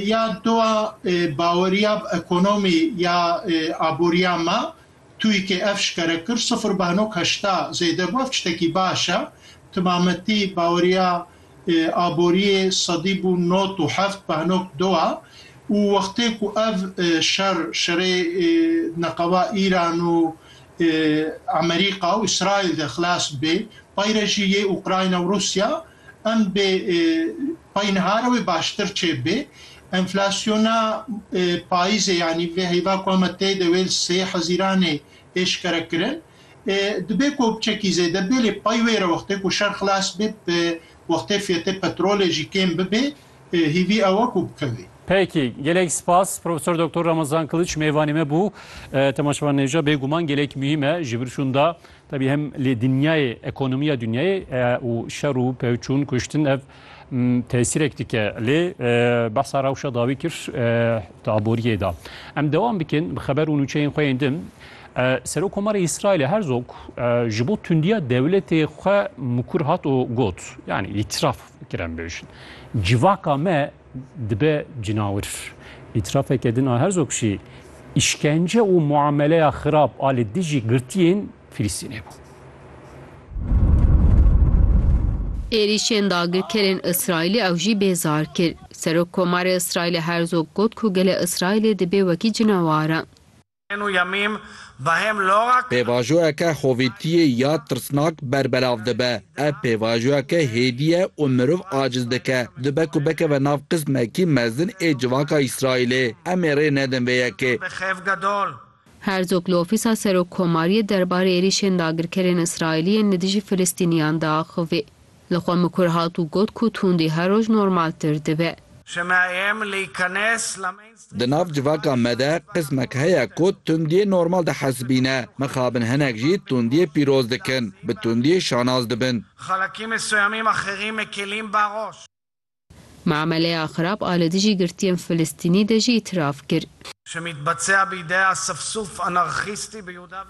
Ya dua baweriya bi ekonomî ya aboriya me TUYK'ê ev şikere kir sifir beh nok heşta zêde bû ev tiştekî baş e. Ti ma me tî baweriya aboriyê sedî bû nod û heft beh nok du e û wextê ku ev şer şerê neqeba Îran û Emerîka û Îsraîl de xilas bibê pay re jî yê Ukrayna û Rûsya Em bê pey nihare wê baştir çê bê. Enflasyona payîzê yanî vê heyva ku eme tê de wê li sê hezîranê êşkere kirin. Dibê ku biçekî zêde bê lê pey wê re wextê ku şer xilas bê bi wextê fiyetê petrolê jî kêm bibê. Hêvî ew e ku bikevê. Peki, gelek spas Profesor Doktor Ramazan Kılıç mêvanê me bû. Temaşevan nêvca bêguman gelek muhîm e ji vir şûnda tebî hem lê dinyayê ekonomiya dinyayê û şer û pevçûn kuştin ev tesîrek dike lê behsa rewşa dawî kir di aboriyê de. Em dewam bikin bi xeber û nûçeyên xwe yên din. Serokkomarê Îsraîlê Herzog ji bo tundiya dewletê xwe mikur hat û got, yanî îtiraf Kerem bêjin. Civaka me dibe cinawir. Îtirafeke din a Herzog jî îşkence û muameleya xirab a li dijî girtiyên Filistînê bû. Êrîşên dagirkerên Îsraîlê ew jî bêzar kir. Serokkomarê Îsraîlê Herzog got ku gelê Îsraîlê dibê wekî cinawaran. Pêvajoyeke xovêtiyê ya tirsnak berbelav dibe. Ev pêvajoyeke hêdî ye û mirov aciz dike. Dibe ku bikeve nav qismekî mezin ê civaka Îsraîlê. Em ê rê nedin vê yekê. Herzog li ofîsa serokkomariyê derbarê êrîşên dagirkerên Îsraîlî yên li dijî Filistîniyan de axivî. Li xwe mikur hat û got ku tundî her roj normaltir dibe. Di nav civaka me de qismek heye ku tundiyê normal dihesibîne. Mixabin hinek jî tundiyê pîroz dikin, bi tundiyê şanaz dibin. Miameleya xirab a li dijî girtiyên Filistînî de jî îtîraf kir.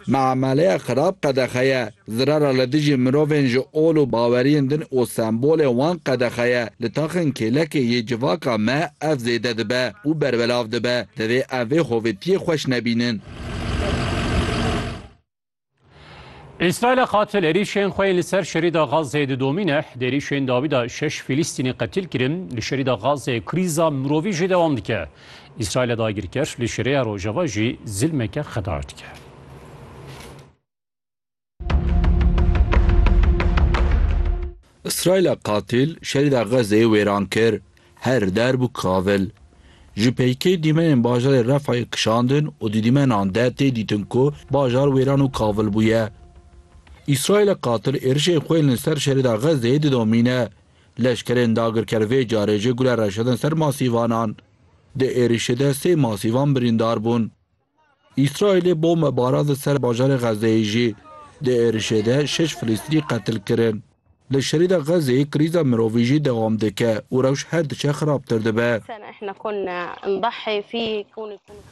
Miameleya xirab qedexe ye. Zirara li dijî mirovên ji ol û baweriyên din û sembolên wan qedexe ye. Li taxên kêlekê yê civaka me ev zêde dibe û berbelav dibe. Divê em vê hovêtiyê xweş nebînin. Îsraîl e qatil êrîşên xwe yên li ser şerîda Gazeyê didomîne. Di êrîşên dawî de şeş Fîlîstînî qetil kirin. Li şerîda Gazeyê krîza mirovî jî dewam dike. Îsraîl e dagirker li şerêya Rojava jî zilmeke xedaş dike. Îsraîl e qatil şerîda Gazeyê wêran kir. Her derb û kavil ji peykê dîmenên bajarê Refayê kişandin û di dîmenan de tê dîtin ku bajar wêran û kavil bûye. Îsraîlê qatil êrişên xwe yên li ser şerîda Xezzeyê didomîne. Leşkerên dagirker vê carê jê gule reşedin ser masîvanan. Di êrişê de sê masîvan birîndar bûn. Îsraîlê bombe barand ser bajarê Xezzeyê jî. Di êrişê de şeş Filîstînî qetil kirin. Li Şerîda Xezzeyê krîza mirovî jî dewam dike û rewş her diçe xirabtir dibe.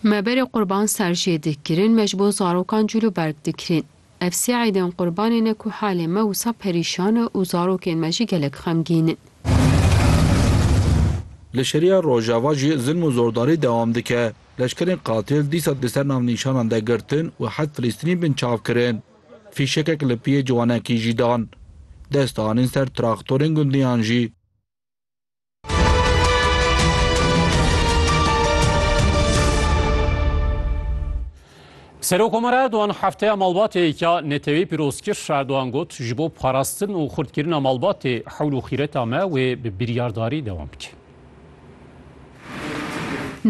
Me berê qurban ser jê dikirin, me ji bo zarokan cûl û berg dikirin. Ev sê eydên qurbanê ne ku halê me wisa perîşan e û zarokên me jî gelek xemgîn in. Li Şeriya Rojava jî zilm û zordarî dewam dike. Leşkerên qatil dîsa di ser navnîşanan de girtin û heft Filîstînî binçav kirin. Fîşekek li piyê ciwanekî jî dan. Dest anîn ser traktorên gundiyan jî. Serokomara Erdogan hefteya malbatê ya netewê pîroz kir. Erdogan got ji bo parastin û xurtkirina malbatê hewl û xîreta me wê bi biryardarî dewam bike.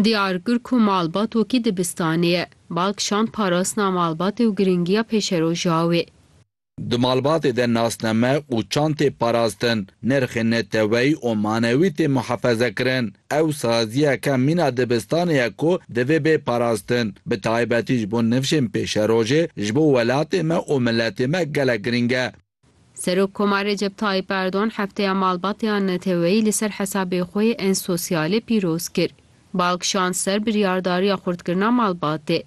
Diyar kir ku malbat wekî dibistanê ye. Bal kişand parastina malbatê û girîngiya pêşeroja wê. Di malbatê de nasname û çand tê parastin, nirxên neteweyî û manewî tê muhefezekirin. Ew saziyeke mîna dibistanê ye ku divê bê parastin. Bi taybetî ji bo nifşên pêşerojê ji bo welatê me û miletê me gelek girîng e. Serokkomar Recep Tayyîp Erdogan Hefteya Malbatê ya Neteweyî li ser hesabê xwe yê Ensosiyalê pîroz kir. Bal kişand ser biryardariya xurtkirina malbatê.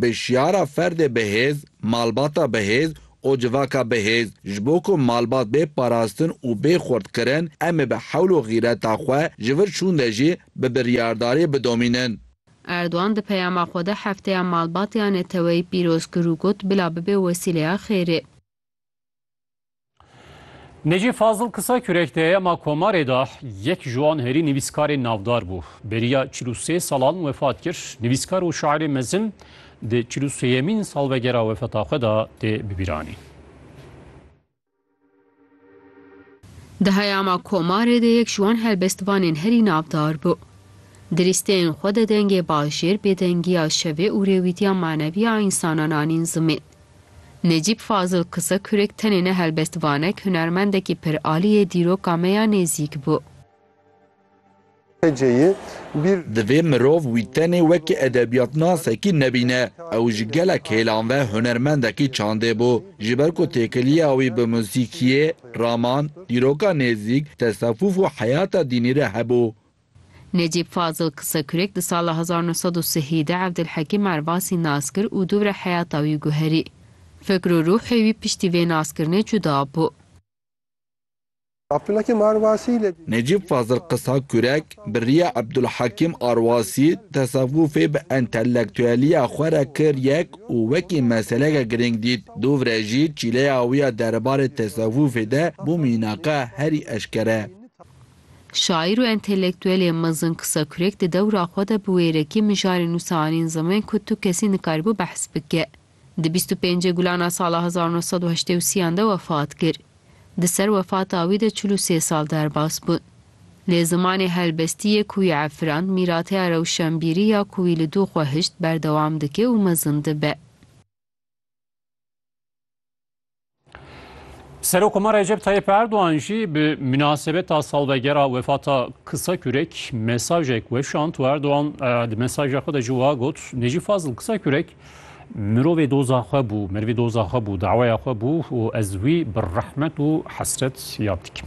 Bi şiyara ferdê bihêz, malbata bihêz û civaka bihêz, ji bo ku malbat bê parastin û bê xurtkirin, em ê bi hewl û xîreta xwe ji vir çûn de jî bi biryardarî bidomînin. Erdogan di peyama xwe de Hefteya Malbatiya Neteweyî pîroz kir û got, Bila bibe wesîleya xêrê. Necî Fazil kisa kürek de ma komarê da yek ji wan herî nivîskarê navdar bû. Beriya çil û sê salan wefat kir. Nivîskar û şairê mezin di çil û sêyemîn salvegera wefata xwe da tê bibîranîn. Di heya ma komarê de yek ji wan helbestvanên herî navdar bû. Di lîsteyên xwe de dengê bajêr, bêdengiya şevê û rêwîtiya manevî ya însanan anîn zimên. Necîb Fazil Kisa kurek tenê ne helbestvanek, hunermendekî pir alî yê dîroka me ya nêzîk bû. Heceyê bîr. Divê mirov wî tenê wekî edebiyatnasekî nebîne. Ew ji gelek hêlan ve hunermendekî çandê bû. Ji ber ku têkiliya wî bi musîkiyê, raman, dîroka nêzîk, tesefûf û heyata dînî re hebû. Necîb Fazil Kisekurek di sala hezar nû sed û sihî de Evdilhekîm Ervasî nas kir û dûvre heyata wî guherî. Fikr û rûhê wî piştî vê naskirinê cuda bû. Evdilhekîm Ervasî li. Necîb Fazil Kisekurek bi riya Evdilhekîm Ervasî tesewufê bi entelektueliya xwe re kir yek û wekî meseleke girîng dît. Dûvre jî çîleya wî ya derbarê tesewufê de bû mînaka herî eşkere. Şaîr û entelektuelê mezin Kisekurek di dewra xwe de bi wêrekî mijarê nûsa anîn ziman ku tu kesî nikaribû behs bike. Di bîst û pêncê gulan a sala hezar û neh sed û heştê û sî an de wefat kir. Di ser wefata wî de çil û sê sal derbas bûn. Lê zimanê helbestî yê ku wî efirand, mîrateya rewşenbîrî ya ku wî li dû xwe hişt berdewam dike û mezin dibe. Serokoma Recep Tayyip Erdoğan jî bi münasebeta salvegera wefata Kısa Kürek mesajek weşand û Erdoğan e, di mesaja xwe de jî wiha got Necî Fazil Kısa Kürek mirovê doza xwe bû, merivê doza xwe bû, daweya xwe bû û ez wî bi rehmet û hesret yad dikim.